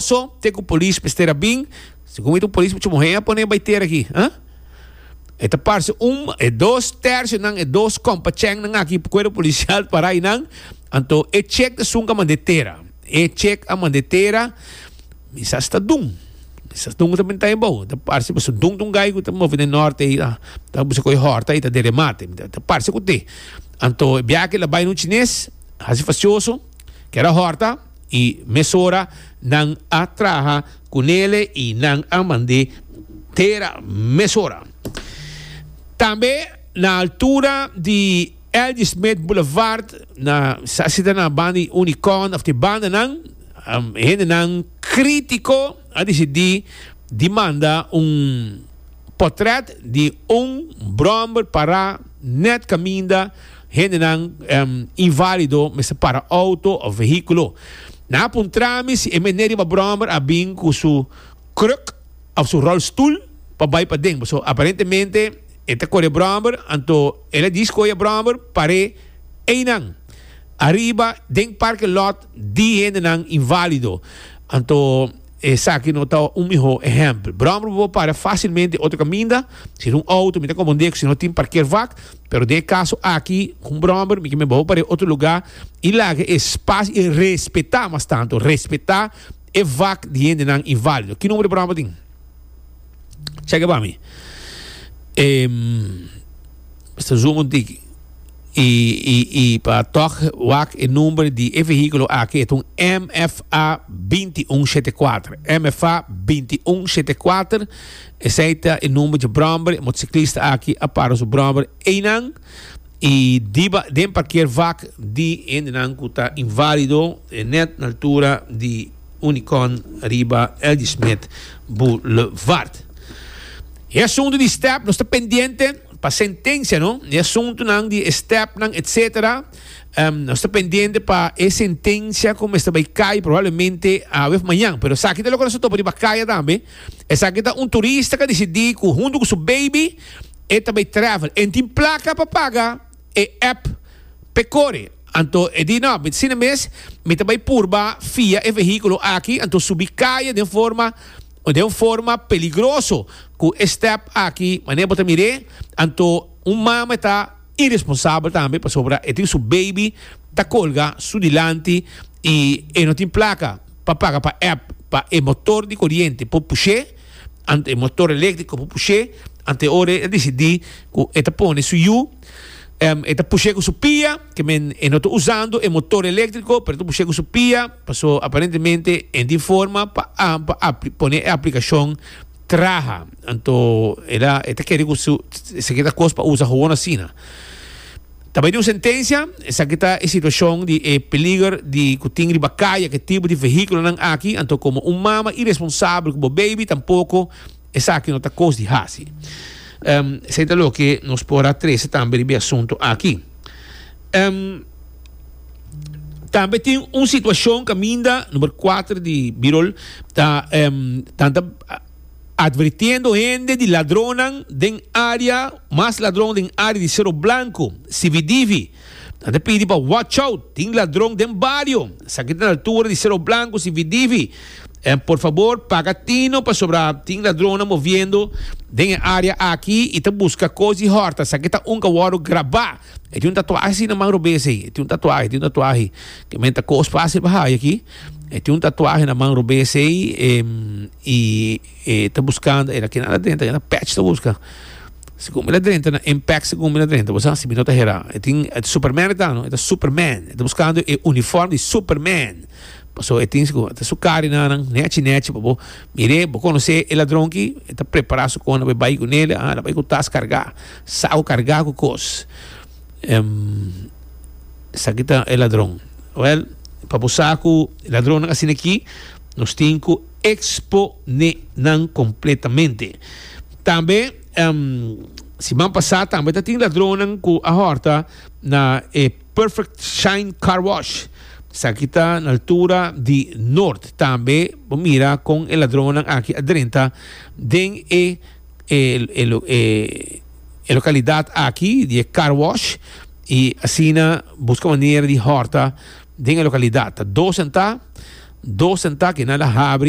So te cu polis mester a bin? Segun mi ta un polis mucho muhé a pone bai ter aki, ha? E ta parce un, e dos tercio nan, e dos compa cheng nan aki cuerpo policial pa rai nan, anto e chek ta sun cu a mandé tera. E chek a mandé tera, mi sa si ta dun, mi sa si dun cu ta bintá e bou, ta parce pasobra dun ta un gai cu ta move den norte ei, ta ta busca cu e horta ei ta den remate, mi ta parce cu te. Anto e biaha aki el a bai na un chines, haci facioso, ker a horta. I mesora nan a traha ku nele i nan a mand'é tera mesora. Tambe na altura di L.G. Smith Boulevard, na sa sita na banda di Unicorn òf te bandanan, hendenan krítiko a disidí di manda un potrèt di un bròmber pará nèt kaminda, Hendenan invalido mester para auto of vehiculo. Nan a puntra mi si e meneer riba brommer a bin cu su kruk of su rolstoel pa bay paden. Paso aparentemente e ta core brommer, anto el a disco e brommer pare eynan. Ariba den parking lot di hendenan invalido. Anto. Esaki no ta un mihó ehèmpel. Bròmber bo para fásilmente otro kaminda, si ta un outo mi ta konpondé ku si no tin parkeervak, pero den e kaso aki ku un bròmber mi ke mihó bo par'é otro lugá i laga e spas i respetá mas tantu respetá e vak di hendenan inválido. Ki nomber di bròmber tin? Chèk'é pa mi. Mister Zungu diki i i i pa tok wak e number di e vehículo aki e ta un MFA binti un shete kuater MFA binti un shete kuater esei ta e number dje bromber e motociclista aki a para su bromber einan i diba den parkeer wak di hendenan ku ta invalido e net na altura di Unicon riba Ladysmith Boulevard. E asuntu di step nos ta pendiente pa sentencia no, e asuntunan di e stepnan etc. Um, nos ta pendiente pa e sentencia cu mester bay caya probablemente awef mañan. Pero esaki ta loke nos ta topa riba caya tambe. Esaki ta un turista ca decidi cu hunto cu su baby e ta bay travel. En tin placa pa paga. e app p'e kore. Anto e di, No, mi ta sina mes, mi ta bai purba fia e vehíkulo aki, anto subi kaye den forma den un forma peligroso ku e stèp aki. Manera bo ta mir'é, anto un mama e ta iresponsabel tambe pasobra e tin su beibi ta kolga su dilanti i e no tin plaka pa paga pa app pa e motor di koriente por push'é. Ante e motor eléktriko por push'é, ante ora e desidí ku e ta pone su yu, e ta push'é ku su pia, ke men e no ta usando e motor eléktriko, pero e ta push'é ku su pia, paso aparentemente e tin forma pa pone e aplikashon traha. Anto e ta kere ku su, si ta kos pa usa, hoon asina. Ta bai di un sentencia, esaki ta e situacion di e peliger di cu tin riba caye cu e tipo di vehiculonan aki, anto como un mama iresponsabel cu bo baby tampoco esaki no ta cos di haci. Esaki ta loke nos por a trece tambe riba e asunto aki. Tambe tin un situacion caminda, number cuater di Birol, ta tanta. Advirtiendo hende di ladronnan den área, mas ladron den área di Sero Blanku, Sividivi. Nan ta pidi pa watch out, tin ladron den bario. Esaki ta na altura di Sero Blanku, Sividivi. En por fabor paga tino pasobra tin ladronnan moviendo den e área aki i ta buska kos di hòrta. Esaki ta un ka wòrdu grabá. E tin un tatuahi asina man robes ey. E tin un tatuahi, e tin un tatuahi. Ke men ta kos fácil pa haya aki. E tin un tatuahi na man robes ey, em, i e ta buskando, e na keda nada drenta, keda patch ta buska. Si kumi la drenta na impact si kumi la drenta, bo sa, si mi no ta hera. E tin, e ta superman e ta no, e ta superman. E ta buskando e uniform di superman. Paso e tin si ku, e ta su kari na nan, nechi nechi pa bo mir'é, bo konos'é e ladron ki, e ta prepara su kona pa e bai ku nel, a, a bai ku tas kargá. Sao carga cu cos. Esaki ta e ladron. Well, pa bo sa cu ladronnan asina aki, nos tin cu expo ne nan completamente. Tambe, siman pasa tambe ta tin ladronnan cu a horta na e Perfect Shine Car Wash. Esaki ta na altura di Noord. Tambe bo mira con e ladronnan aki a drenta den e. e localidad aki di e car wash y asina busca manera di horta den e localidad ta dos en ta dos en ta ke nan la habri